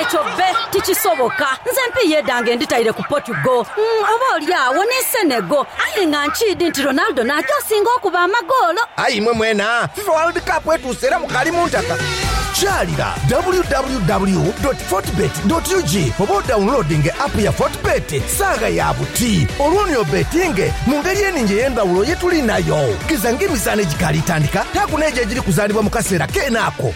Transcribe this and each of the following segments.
Ekyo bbe tikisoboka. Nze empiiyi edhange nditaire ku Portugal. Oba oli agho ni Senegal. Aye nga nkiidhi nti Ronaldo naagya osinga okuba amagoolo. Aye imwe mwena, Fifa World Cup etuuse era mukaali mu ntaka. Kyalira www doti fortebet doti ug oba odaunloadinge app ya Fortebet. Saagha ya buti olwo ni obetinge mu ngeri eningi ey'endhawulo ye tuli nayo. Geza ng'emizaano egikaali tandika, taaku n'egyo egiri kuzaalibwa mu kaseera keene ako.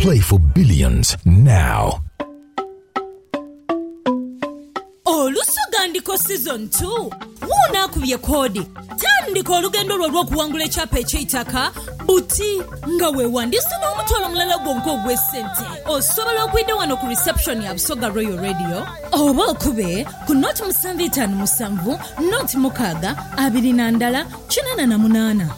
Play for billions now. Oluso Gandiko Season 2 Wuuno akubye koodi! Tandika olugendo lwo olw'okuwangula ekyapa eky'eitaka buti nga weewandiisa n'omutwalo mulala gwonka ogw'esente. Osobola okwidha wano ku reception ya Busoga Royal Radio oba okube ku nought musanvu itaanu musanvu nought mukaaga abiri na ndala kinaana na munaana.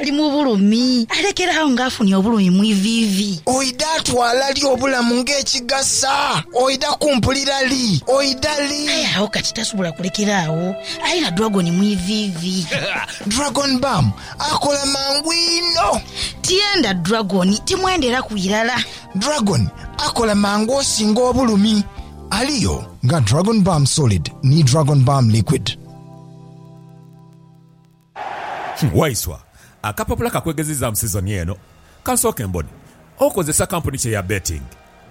Ali mu bulumi, alekere agho ng'afunye obulumi mu iviivi. Oidha twala li obulamu ng'ekigasa? Oidha kumpulira li? Oidha li? Aye agho kati tasobola kulekera agho, ali na dragoni mu iviivi. Dragon Bam akola mangu inho. Tienda dragoni, timwenderaku irala. Dragoni akola mangu osinga obulumi. Aliyo nga Dragon Bam Solid ni Dragon Bam Liquid. Waiswa, Akapapula ka kwegezizaamu sizoni eno kansooke mbone okozesa kampuni ki eya betting.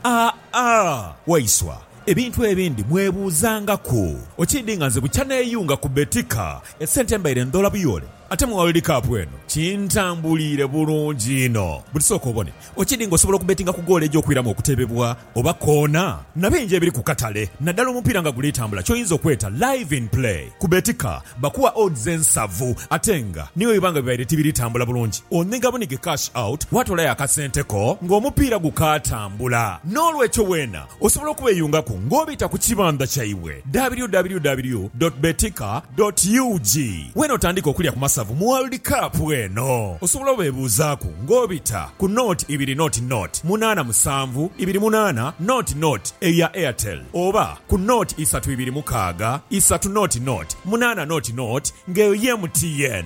Aah-aah Waiswa, ebintu ebindi mwebuuzangaku okiidi nga nze bukya neeyunga ku Betika esente mbaire ndhoola buyoole ate mu World Cup eno kintambuliire bulungi inho. Buti sooka obone Okidi nga osobola okubetinga ku goolo egy'okwiramu okutebebwa oba koona na bingi ebiri ku katale naddala omupiira nga guli tambula ky'oyinza okweta Live in Play. Ku Betika bakuwa odds ensavu ate nga ni bwe biba nga bibaire tibiri tambula bulungi onhiga bunhige cash out watoolayo akasente ko ng'omupiira gukaatambula. N'olwekyo weena Osobola okubeyungaku nga obita ku kibandha kyaibwe www dot betika dot ug wena otandike okulya ku masavu mu World Cup eno. Osobola obebuuzaaku nga obita ku nought ibiri nought nought munaana musanvu ibiri munaana nought nought eya Airtel oba ku nought isatu ibiri mukaaga isatu nought nought munaana nought nought nga eyo ye MTN.